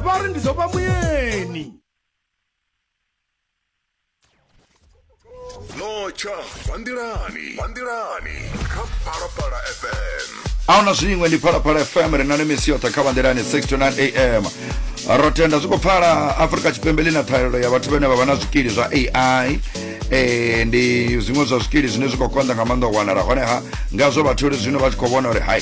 vha ri ndi ḓo vha muyeni notsha vanḓilani vanḓilani kha phalaphala fm ahuna zwiṅwe ndi phalaphala fm ri na ni misi yoṱhe kha vanḓilani 629 am ro tenda zwi khou pfala afurika tshipembe ḽi na ṱhahelelo ya vhathu vhane vha vha na zwikili zwa ai e, ndi zwiṅwe zwa zwikili zwine zwi khou konḓa nga maanḓa u wanala honeha ngazwo vhatholi zwino vha tshi khou vhona uri hai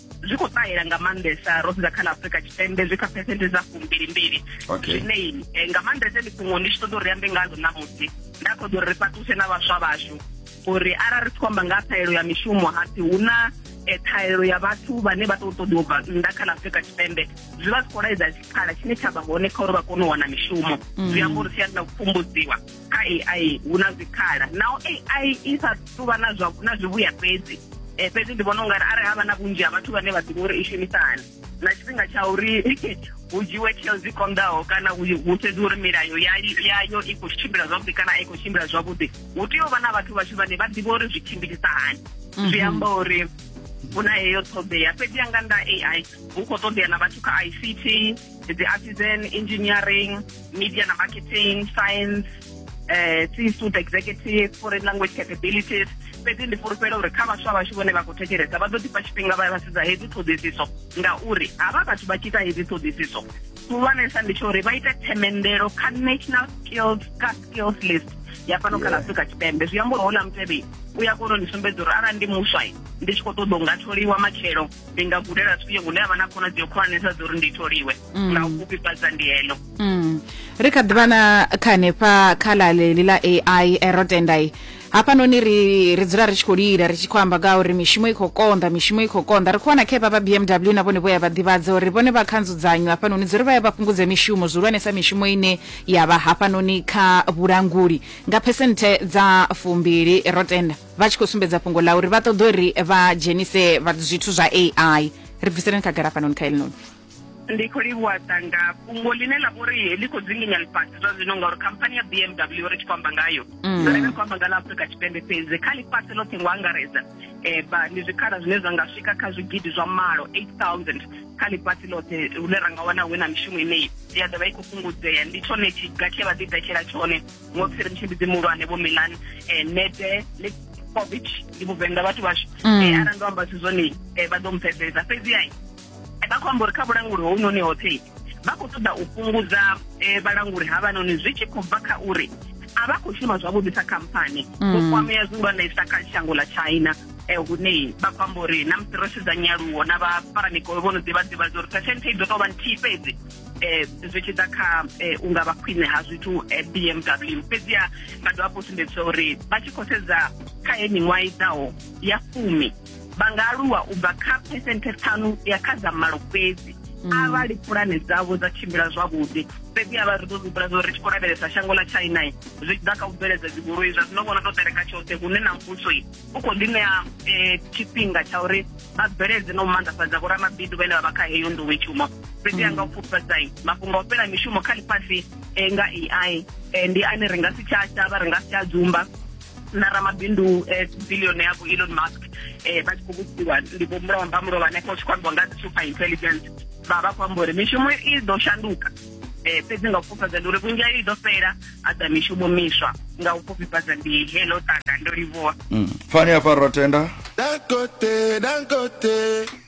zwi khou ṱahela nga maanḓesa ro sedza kha ḽa afurika tshipembe zwi kha phesenthe dza fumbilimbili zwine eh, nga maanḓesa ndi fhungo ndi tshi ṱoḓa uri ambe ngazwo ṋamusi nda khoḓa uri ri fhaṱuse na vhaswa vhashu uri arali ri tshi khou amba nga ṱhaelo ya mishumo hapfi hu na eh, ṱhaelo ya vhathu vhane vha tou ṱoḓiwa bva nnḓa kha ḽa afurika tshipembe zwi vha zwi khou laedza tshikhala tshine tsha vha hone kha uri vha kone u wana mishumo mm. zwi amba uri siani na u pfumbudziwa kha ai hu na zwikhala naho ai i sa tuvha na zwa na zwivhuya fhedzi um fhedzi ndi vhona u nga ri arali ha vha na vhunzhi ha vhathu vhane vha ḓivha uri i shumisa hani na tshifhinga tsha uri hu dzhiwe tsheo dzi konḓaho kana hu sedzwe uri milayo yayo i khou tshimbila zwavhuḓi kana a i khou tshimbila zwavhuḓi hu tea u vha na vhathu vhashu vhane vha ḓivha uri zwi tshimbilisa hani mhm. zwi amba uri hu na heyo ṱhoḓea fhedzi ya nga nda ai hu khou ṱoḓea na vhathu kha ict dzi artisan engineering media na marketing science eh tsi student executive foreign language capabilities fhedzi ndi fhulufhela uri kha vhaswa vhashu vhone vha khou thetshelesa vha ḓo ḓifha tshifhinga vha vhasedza hedzi ṱhoḓisiso ngauri havha vhathu vha tshi ita hedzi ṱhoḓisiso khulwanesa ndi tsho uri vha ite themendelo kha national skills ka skills list ya fhano kha afrika tshipembe zwi amba uri houḽa mutevhe u ya kona u ndi sumbedza uri arali ndi muswa ndi tshi khou ṱoḓa u nga tholiwa matshelo ndi nga gudela zwifhio hune ha vha na khonadzeo khulwanesa dza uri ndi tholiwe mm. nga u fhufhifhadza ndi heḽo mm. ri kha ḓivha na kha hanefha kha ḽa ḽeḽi ḽa ai eh, ro tendai hafhanoni ri ri dzula ri tshi khou lila ri tshi khou amba nga uri mishumo i khou konḓa mishumo i khou konḓa ri khou wana khepa vha bmw na vhone vho ya vha ḓivhadza uri vhone vha kha nzudzanyo hafhanoni dzi ri vha ya vha fhungudze mishumo zwihulwanesa mishumo ine ya vha hafhanoni kha vhulanguli nga phesenthe dza fumbili ro tenda vha tshi khou sumbedza fhungo ḽa uri vha ṱoḓa uri vha dzhenise zwithu zwa ai ri bviseleni khagala hafhanoni kha elinoni ndi khou livhuwa sanga fhungo ḽine ḽa vhori ḽi khou dzinginya ḽifhasi zwa zwino ngauri khamphani ya bmw ri tshi khou amba ngayo mm. ri khou amba nga ḽa afurika tshipembe fhedzi kha ḽifhasi ḽoṱhe ngo angaredza um ndi zwikhala zwine zwa nga swika kha zwigidi zwa malo 8000 kha ḽifhasi ḽoṱhe hune ra nga wana hu na mishumo ineyi ya ḓovha i khou fhungudzea ndi tshone tshiga tshe vha ḓi ḓetshela tshone ngosi ri mutshimbidzi muhulwane vho milan um eh, nete covid ndi vhuvenḓa vhathu vhashu mm. eh, arali ndo amba zwithu zwone eh, vha ḓo mpfesesa fhedzi ai vha khou amba uri kha vhulanguli hounoni hoṱhe vha khou ṱoḓa u fhungudza eh, vhalanguli havhanoni zwi tshi khou bva kha uri a vha khou shuma zwavhuḓi sa khamphani mm. vho kwamea zwihulwanesa kha shango ḽa china eh, hune vha khou amba uri na musi ro sedza nyaluwo na vha faramikolo vho no ḓivha ḓivha zwa uri phesenthe i ḓo tou vha nthihi fhedzi eh, zwi tshi ḓa kha eh, u nga vha khwine ha zwithu eh, bmw fhedziha vha dovha fho sumbedzisa uri vha tshi khou sedza kha ye miṅwaha i ḓaho ya fumi vha nga aluwa u bva kha phesenthe ṱhanu ya kha dza malo fhedzi mm. arali pulane dzavho dza tshimbila zwavhuḓi fhedzi a vha ri ḓo zwihumbula zwa uri tshi khou lavhelesa shango ḽa china zwi tshi ḓa kha u bveledza dzigoloi zwa zwino vhona tou ṱereka tshoṱhe hune na muvhuso u khou ḓi ṋea eh, tshifhinga tsha uri vha bveledze na u maanḓafhadza vhoramabindu vhane vha vha kha heyo nḓowetshumo fhedzi a nga u pfufhadzai mafhungo o fhela mishumo kha ḽifhasi eh, nga ai eh, ndi ane ri nga si tsha shavha ri nga si tsha dzumba na ramabindu eh, billion ya elon musk eh, vha tshi khou vhudziwa ndi vho mulomba mulomba hanefho tshi khou ambiwa nga dzi super intelligence vha vha khou amba uri mishumo i ḓo shanduka eh, fhedzi nga u fhufhadza ndi uri vhunzhi i ḓo fhela a ḓa mishumo miswa nga u fhufhifhadza ndi helo tanga ndo livhuwa mm. fani hafha ro tenda Dangote, Dangote.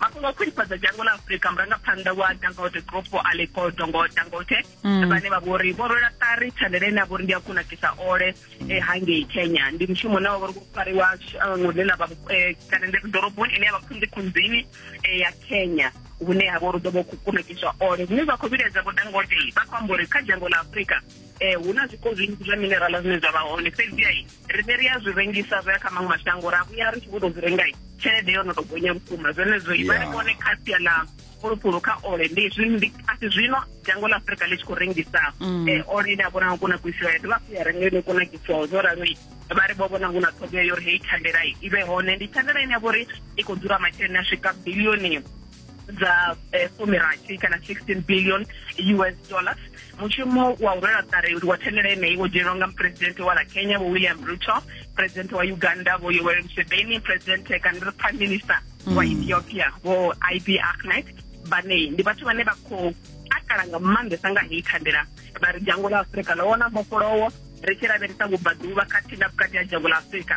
mafhungo a khwinifhadza dzhango ḽa afurika murangaphanḓa wa dangote group aleko dongo dangote mm. vhane vha vho ri vho rwela ṱari thandela ine a vho ri ndi a kunakisa ole e hangei kenya ndi mushumo une wa vho ri vho fariwa shango ḽe ḽa vha e, kana ndi ḓoroboni ine ya vha khunzi khunzini e, ya kenya hune ha vha uri ḓo vha khou kunakiswa ole zwine zwa khou vhiledza vho dangote vha khou amba uri kha dzhango ḽa afurika um hu na zwiko zwinzhi zwa minerala zwine zwa vha hone fhedziai riṋe ri a zwi rengisa zwo ya kha maṅwe mashango ra vhuya ri tshi vho to zwi rengai tshelede yo no to gonya vhukuma zwenezwo i vha ri vhone kha sia ḽa fulufulu kha ole ndi zwi asi zwino dzhango ḽa afurika ḽi tshi khou rengisa mm. eh, ole ine a vhona u kunakisiwa ya dovha ya renga ine kunakisiwaho zwo ralo vha ri vho vhona hu na ṱhogea yo ri heyi thandela i vhe hone ndi thandela ine ya vho ri i khou dzula masheleni a swika bilioni dza eh, fumirathi kana 16 billion us dollars mushumo wa u rwela ṱari wa thendela yeneyi wo dzhenelwa nga mupresidente wa la kenya vho william ruto presidente wa uganda vho yoweri museveni presidente kana ri prime minister wa mm. ethiopia vho ib ahmed vhanei ndi vhathu vhane vha khou takala nga maanḓesa nga heyi thandela vha ri dzhango ḽa afurika ḽo wona mbofholowo ri tshi lavhelesa vhubvaḓuvha khathihi na vhukati ha dzhango ḽa afurika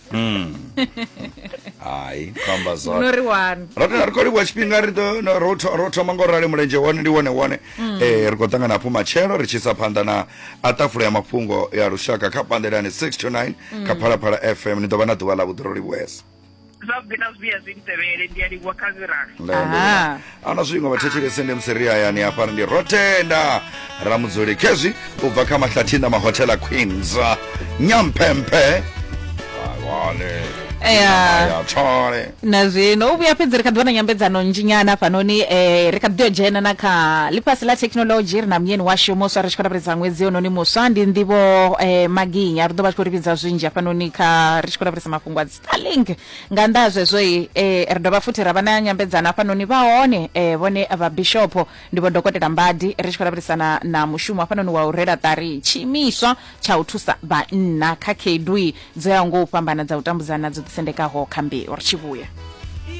Mm. hai khamba zwa no ri wani ro tea ri khou livhuwa tshifhinga ri ḓo- no- ro tho- ro thoma ngo rali mulenzhe wone ndi wone wone Eh, ri khou ṱangana hafhu matshelo ri tshi isa phanḓa na a ṱafula ya mafhungo ya lushaka kha pandelani 6 to 9 kha phalaphala fm ni ḓo vha na ḓuvha ḽa vhuḓi ro livhuesa zwavhuḓi na zwivhuya zwi ntevhele ndi a livhuwa kha zirali Lele. Aha. ano zwingo vhathetshelese ndi musiri hayani hafha ndi rotenda ramudzuli khezwi u bva kha mahlathina mahotela queens nyamphemphe awale Eya. ya tshole na zwino u vhuya fhedzi ri kha ḓi vha na nyambedzano nzhinyana hafhanoni um ri kha ḓi ḓo dzhena na kha ḽifhasi ḽa thekhinolodzhi ri na munyeni washu muswa ri tshi khou lavhelesa ṅwedzi yononi muswa ndi nḓivho um maginya ri ḓo vha tshi khou ri vhidza zwinzhi hafhanoni kha ri tshi khou lavhelesa mafhungo a dzi starlink nga nnḓa ha zwezwo i eh, ri dovha futhi ra vha na nyambedzano hafhanoni vha hone eh, vhone vha bishopo ndi vho dokotela mbadi ri tshi khou lavhelesana na mushumo hafhanoni wa u rela ṱari tshiimiswa tsha u thusa vhanna kha khaedu dzo yaho ngo u fhambana dza u tambudzana dzo ḓisendekaho kha mbeu ri tshi vhuya